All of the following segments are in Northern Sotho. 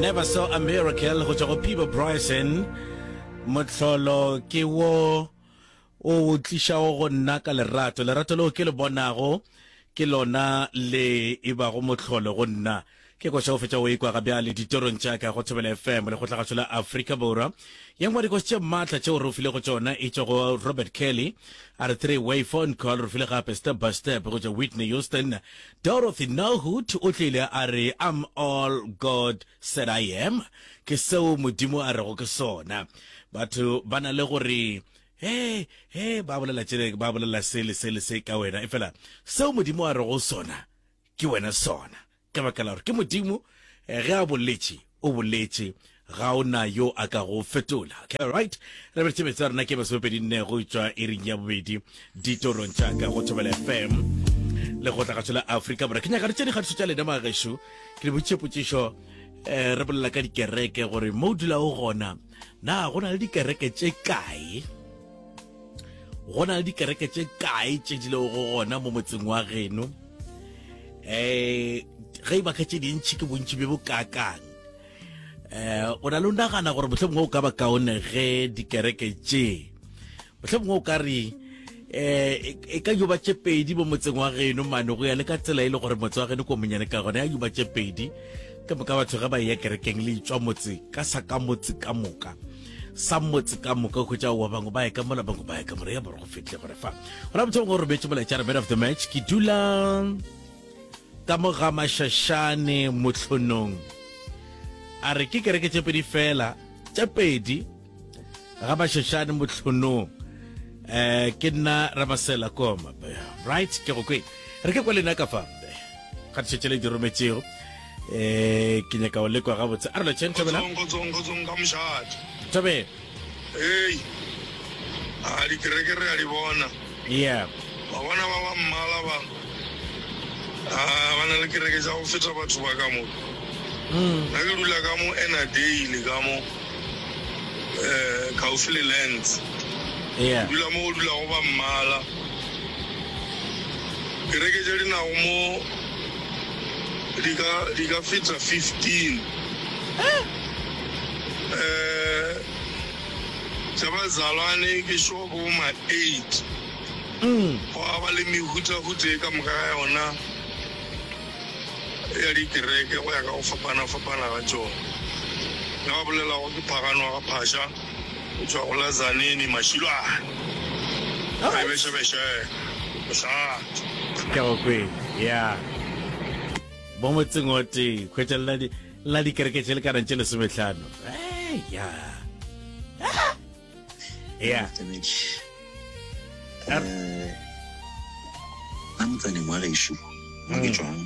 Never saw a miracle go tswa go Pibo Bryson motlholo ke wo o o tlišago go nna ka lerato lerato leo ke le bonago ke lona le e bago motlholo go nna ke koša go fetša o ikwa ga bjale ditorong tša ka go thobela fm le kgotlagatsho la aforika borwa ye nngwe dikoši tše maatla tšeo re ofile go tsona e tšwa go robert kelly a re three way phone call re file gape step by step go tša whitney houston Dorothy Norhut o tlile a re, I'm all God said I am, ke seo Modimo a rego ke sona. Batho ba na le go re, He, he, ba bolela tše, ba bolela se le se le se ka wena, efela seo Modimo a rego sona ke wena sona. Ka baka la gore ke Modimo, ge a boletše, O boletše, Ga o na yo a ka go fetola. Okay, alright. Re be tšebetsa rena ke masomepedi nne go tšwa iring ya bobedi ditorong tša ka go Thobela FM le go tlagatšo la Afrika Borwa. Ke nyaka re tše dikgatišo tša lena magaešo. Ke le botše potšišo eh, re bolela ka dikereke gore mo o dulago gona na go na le dikereke tše kae go na le dikereke tše kae tše di lego gona mo motseng wa geno um eh, ge e baka tše dintšhi ke bontši bjo bokakang um eh, o na le o nagana gore motlho mongwe o ka ba kaone ge dikereke tšee motlhe mongwe o ka re um e ka juba tše pedi mo motseng wa geno mane go ya le ka tsela e le gore motse wa geno ko monyane ka gone ya juba tše pedi ka moka batho ge ba eya kerekeng le itswa motse ka sa ka motse ka moka sa motse ka moka go tša wa bangwe ba e ka mola bangwe ba e ka mola ya bore go fitlhe gore fa go na motho mongwe o rometse molaetša re man of the match ke dula ka mo ga mašašane motlhonong a re ke kereke tše pedi fela tše pedi ga bašošane mohlonong eh ke nna rabasela koma right ke go kwe re ke kwa lena ka fa mbe ga tšhetše le di rometšego eh ke nyaka o lekwa gabotse a re lotšheng thobela tobe ei a dikerekere a di bona Yep. Wa bona ba ba mmala ba, a ba na le kereke tša go feta batho ba ka mo. Nna ke dula ka mo Ennerdale ka mo, eh, kgauswi le Lands. Ke Yep. dula mo go dulago ba mmala. Kereke tše di nago mo di ka, di ka feta 15. Eh. tša bazalwane ke xo bo ma eight. Gwa ba le mehutahuta e ka moka ga yona ya dikereke go ya ka go fapana-fapana ga tšona. Nna ba bolelago ke Phagano wa Gaphasha go tšwa go la Zanini, Mashilwane, Mebešebeše, Mošate. Ka go kwele, ya. Mo motseng o tee, hwetša lena le. la dikereke tše lekanang tše lesometlhano ya ya a motsaneng wa gešo mo ke tswang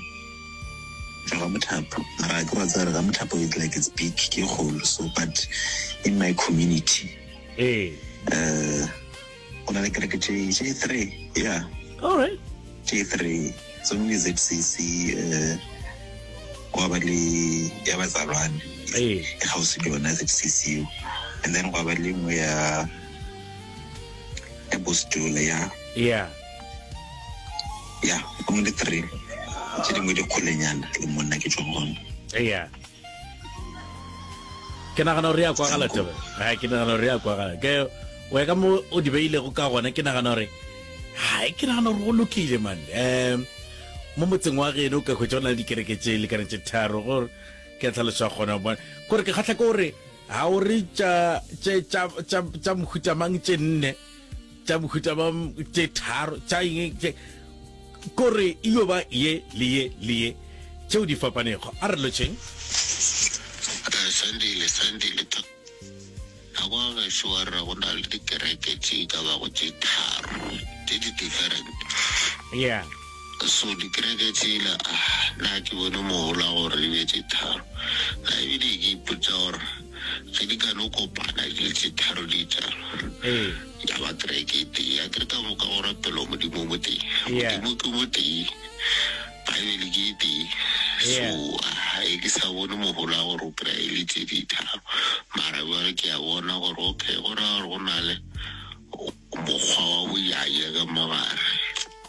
tswa ga mothapo mara ke wa tsare ga mothapo it's like it's big ke kgolo so but in my community ee um go na le kereke tše tše three ya all right tše three tse ngwe ke zcc um gwa ba le ya batsalwane e kgausi le yona zcc eo and then gwa ba le nngwe ya ya bostola ya ya ya o le three tše dingwe dikgolenyana le monna ke tšwa gona ya ke nagana gore ya kwagala tebe ga ke nagana gore ya kwagala ke o ka mo o di beilego ka gona ke nagana gore ga ke nagana gore go lokile man um mo motseng wa geno ka kgwetsa go na le dikereke tse le kana tse tharo gore ke tlhalosa gona bona kore ke kgatlha ke gore ga o re tša mohutamang tše nne tša mohuta ba tše tharo tša eng tše kore e yo ba ye le ye le ye tšeo di fapanego a re lotšheng sandile sandile to nako gešo wa re go na le dikereke tše ka bago tše tharo tše di different yeah So dikereke tsela ah na ke bone mohola gore di be tše tharo na ebile ke ipotsa gore ge di ka no kopana di le tše tharo di etsang ya ba kereke e tee ya kere ka moka go rapelwa modimo mo teng modimo ke mo tee baebele ke e tee so ga e ke sa bone mohola gore o kry e le tse di tharo mara bjale ke a bona gore okay go raya gore go na le mokgwa wa boyaya ka mogare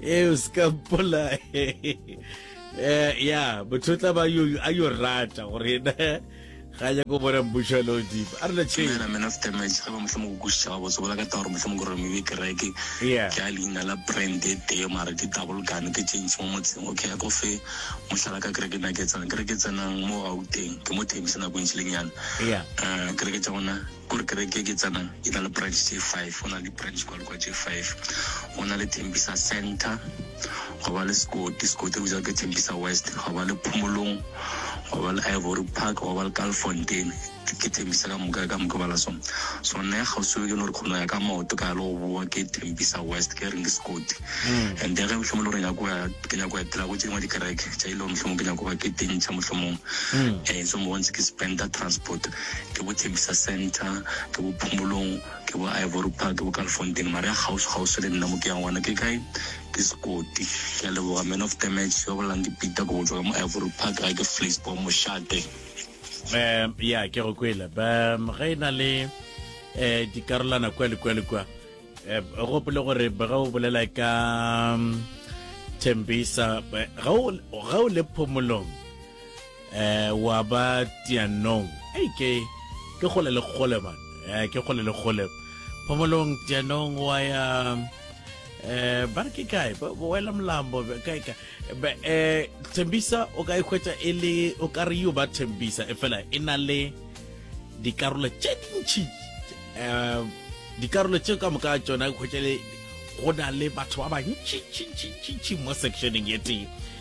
e o se ka mpola eh, ya motho o tla ba a yo rata gore ena ga ya ko bona mmušo le odimo a rena chena man of damage ga ba motlha mo go kušitša ga botse bola ka taba gore motlha mo gore mebe kereke ke a leina la brand e tee mara ke double gun ke change mo motseng okay a ko fe motlhala ka kereke na ke tsenang kereke tsenang mo gauteng ke mo themisa nako e ntšhilenyana eh, kereke tša gona Gore kereke e ke tsenang e na le branch tše five, go na le di-branch kwa le kwa tše five. Go na le Tembisa Centre, gwa ba le Sekoti, Sekoti re bitsa ke Tembisa West, gwa ba le Phomolong, gwa ba le Ivory Park, gwa ba le Kalfontein. Ke Tembisa ka moka ka moka bala so. So nna ya kgauswi ke no re kgono ya ka maoto ka ya le go boa ke Tembisa West ke reng ke Sekoti. And then ge mohlomong le gore nyako ya ke nyako ya etela go tše dingwe dikereke tša ile gore mohlomong ke nyako ba ke tentšha mohlomong. Eh so mo bontse ke spenda transport. ke bo Tembisa Centre, ke bo Phomolong, ke bo Ivory Park, ke bo Kalifontein, mara ya kgauswi kgauswi le nna mo ke yang gona ke kae? Ke Sekoti. Ke a leboga man of the match, yo bolelang ke Peter ko botswa ka mo Ivory Park, ga ke Vleispoort mošate. Ya ke go kwele ba ge e na le um dikarolana kwa le kwa le kwa um gopole gore ga o bolela ka Tembisa ga o le Phomolong eh wa ba tianong ei ke ke gole le gole man eh ke gole le gole phomolong tianong wa ya eh ba re ke kae ba ba wela molambo be- kae kae Be, eh thembisa o ka ikhwetsa e le o ka re yo ba thembisa e fela e na le dikarolo tše dintši eh dikarolo tše ka moka tšona ikhwetsa le go na le batho ba bantšintšintšintši mo sectioneng ye tee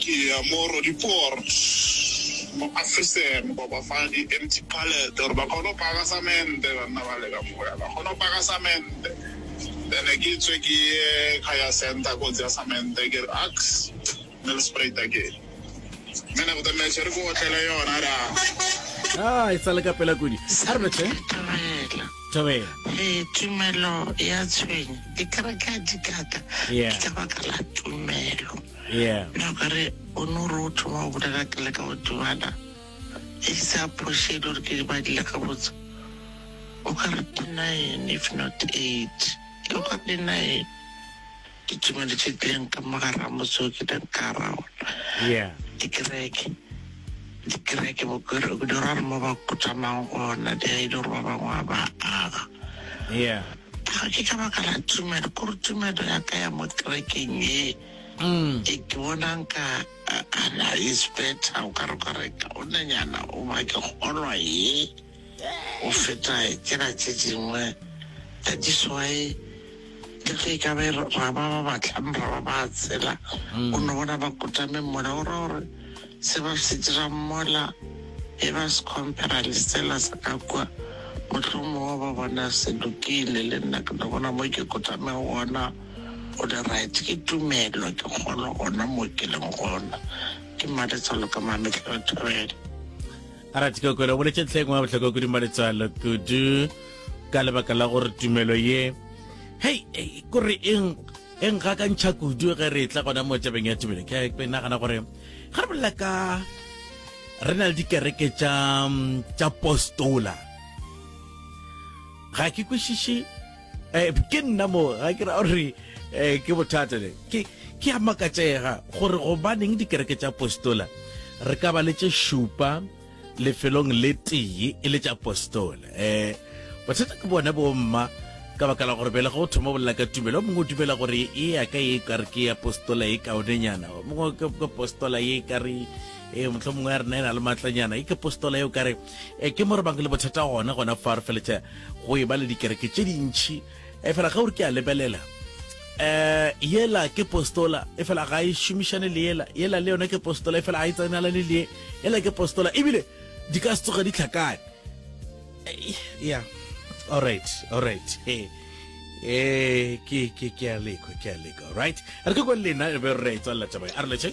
Ke ya mo Roodepoort, mo Afrisan, ba ba fa di empty pallet gore ba kgone go paka samente, banna ba le ka moya ba kgone go paka samente, then ke tswe ke ye ka ya centre ko tseya samente, ke re ax me le spruita ke man of the match, re ke otlele yona ra. Haa, e sa le ka pela kudu. Sarve tle. Thobela. Ee, tumelo ya tshwenya dikereke a di kaka Yeah. ke ka baka la tumelo Yeah. na ka re o ne o re o thoma go bolela ke leka go dumana e sa phoše e le gore ke di badile gabotse o ka re ke nine if not eight ke o ka re di nine Ke tšomaletše bjang ka mo gare ga motse o ke bjang ka gare ga ona? Yeah. Dikereke. Dikereke bo ke di ra re mo ba kutamang gona di a e le gore ba bangwe a ba aga. Yeah. Ga ke ka baka la tumelo, ke gore tumelo ya ka ya mo kerekeng ye e ke bonang ka ana is better o ka re ka reka o nanyana o ba ke kgolwa ye. go feta tsela tše dingwe tsa diswai, le ge e ka be ra ba ba batlang ra ba ba tsela. O no bona ba kutame mola, o ra gore se ba se dirang mola e ba se compara le sela sa ka kua, mohlomongwe ba bona se lokile. Le nna ke no bona mo ke kutamego gona go le right, ke tumelo, ke kgolo gona mo ke leng gona. Ke mmaletswalo ka Mametlelethobela. a ra tikokwelo boletše ntlha e ngwe ya bohlokwa kuding ba letswalo kudu ka lebaka la gore tumelo ye hei e, kore eng e nka ka ntšha kudu ge re tla gona mo tabeng ya tumelo ke ke nagana gore ga re bolela ka re na le dikereke tša tša postola ga ke kwešiše Eh, ke nna mo ga ke ra gore eh, ke bothata le ke ke a makatsega gore gobaneng dikereke tša apostola re ka ba le tše šupa lefelong le tee e le tša apostola um eh, bothata ke bone bomma ka baka la gore bele ga o thoma bolela ka tumelo mongwe o dumela gore e ya ka e kare ke apostola e kaonenyana mongwe ke apostola e kare e motlho mongwe ya rena e na le maatlanyana e ke apostola eo kare e ke mo re bang le bothata gona gona fa re feletša go e ba le dikereke tše dintšhi e fela ge o re ke a lebelela um yela ke postola e fela ga e šomišane le yela yela le yone ke postola e fela ga e tsenalane le yela ke postola ebile di ka se tsoge di tlhakane ya allright allright e ke ke ke a lekwa ke a lekwa right re ke kwele lena e be re tswalela taba a re letshe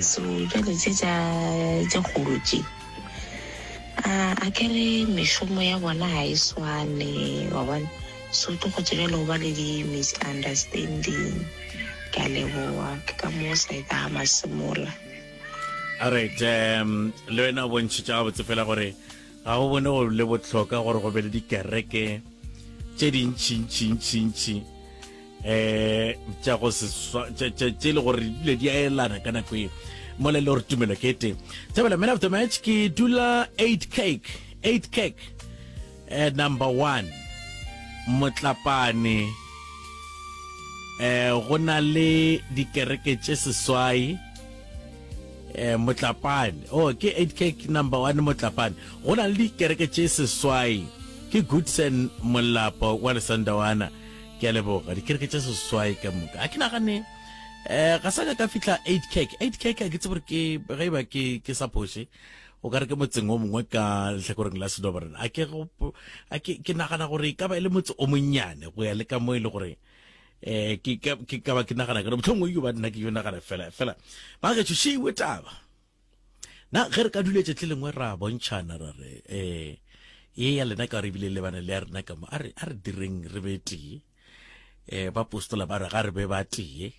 So bjale tše tša tše kgolo tše a a ke re mešomo ya bona ga e swane wa bona so tlo go tsebjale go ba le di-misunderstanding ke a leboa ke ka moo sa e ka masemola alright um le wena o bontšhitša gabotse fela gore ga go bone go le botlhoka gore go be le dikereke tše dintšhintšhintšhintšhi um tša go seswa tše le gore dile di a elana ka nako e mole le gore tumelo ke ete thabela man of the match ke dula 8 cake 8 cake uh, number one motlapane um go na le dikereke tše seswai um motlapane o oh, ke 8 cake number one motlapane go na le dikereke tše seswai ke goodson molapo wa lesandawana Ke a leboga. Dikereke tše seswai ka moka. Ha ke nagane eh ga sa ka ka fihla eight cake. Eight cake ke tsebore ke ge ba ke ke sa phoše. O ka re ke motseng o mongwe ka lehlakoreng la Sedobarena. A ke go a ke ke nagana gore e ka ba e le motse o monnyane go ya le ka mo e le gore eh ke ka ke ka ba ke nagana gore mohlomongwe yo ba nna ke yo nagana fela fela ba ge tšhošeiwe taba. Na ge re ka duletše tle lengwe ra bontšhana ra re eh ye ya lena ka re bile lebane le ya rena ka mo a re a re direng re be tee eh ba postola ba re ga re be ba tee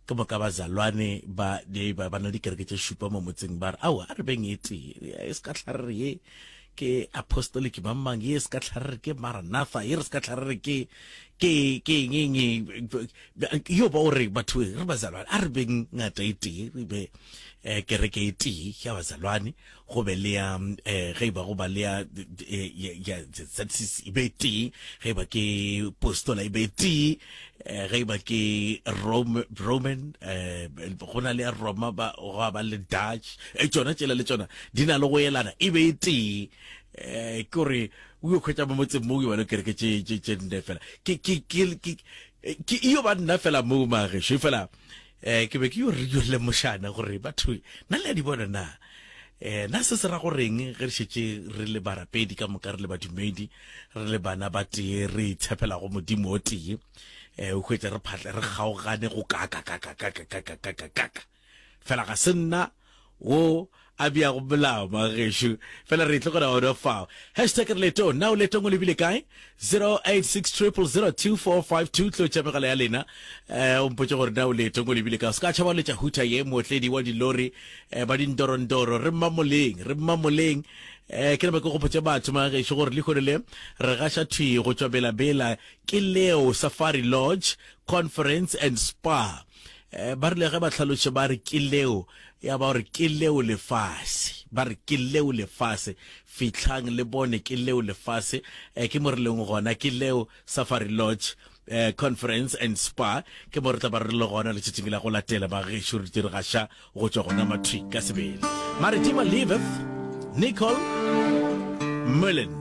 ke moka ba zalwane ba di ba bana di kereke tše šupa mo motseng ba re ao a re beng e tee e se ka tlharere ye ke apostolic mang mang ye se ka tlharere ke maranatha ye re se ka tlharere ke ke ke eng eng Yo ba o re batho re bazalwane, a re beng ngata e tee, re be kereke e tee ya bazalwane, go be le ya ge e ba go ba le ya ya ZCC e be e tee, ge e ba ke postola e be e tee, ge e ba ke Roman go na le ya Roma ba go ba le Dutch tšona tšela le tšona di na le go elana e be e tee. Ke gore o yo khwetša mo motseng mo o yo ba le kereke tše tše tše nne fela ke ke ke ke ke iyo ba nna fela mo magesho fela eh ke be ke yo re yo le moshana gore batho na le di bona na eh na se se ra goreng ge re shetse re le barapedi ka moka re le badumedi re le bana ba tee re itshepela go modimo o tee eh o hwetsa re phatla re kgaogane go ka ka ka ka ka ka ka ka ka ka Fela ga se nna wo a beago molao, mga gešo. Fela re tlogela ona fao. Hashtag re letong. Na o letong o lebile kae? 086 000 2452 tlotša megala ya lena. Eh, o mpotše gore na o letong o lebile kae. O se ka tšhaba o letša huta ye mootledi wa dilori eh, ba dindorondoro. Re mmamoleng, re mmamoleng. Eh, ke nama ke gopotše batho mga gešo gore lehono le re gaša thwi go tšwa belabela ke leo safari lodge conference and spa Eh, ba rile ge ba tlhalotše ba re ke leo ya ba gore ke leo lefase ba re ke leo lefase fitlhang le bone ke leo lefase eh, ke mo re leng gona ke leo safari lodge eh, conference and spa ke mo re tla ba re le gona letšatšing la go latela ba gešo re dire gaša go tšwa gona matric ka sebele maritima liveth nicole mullen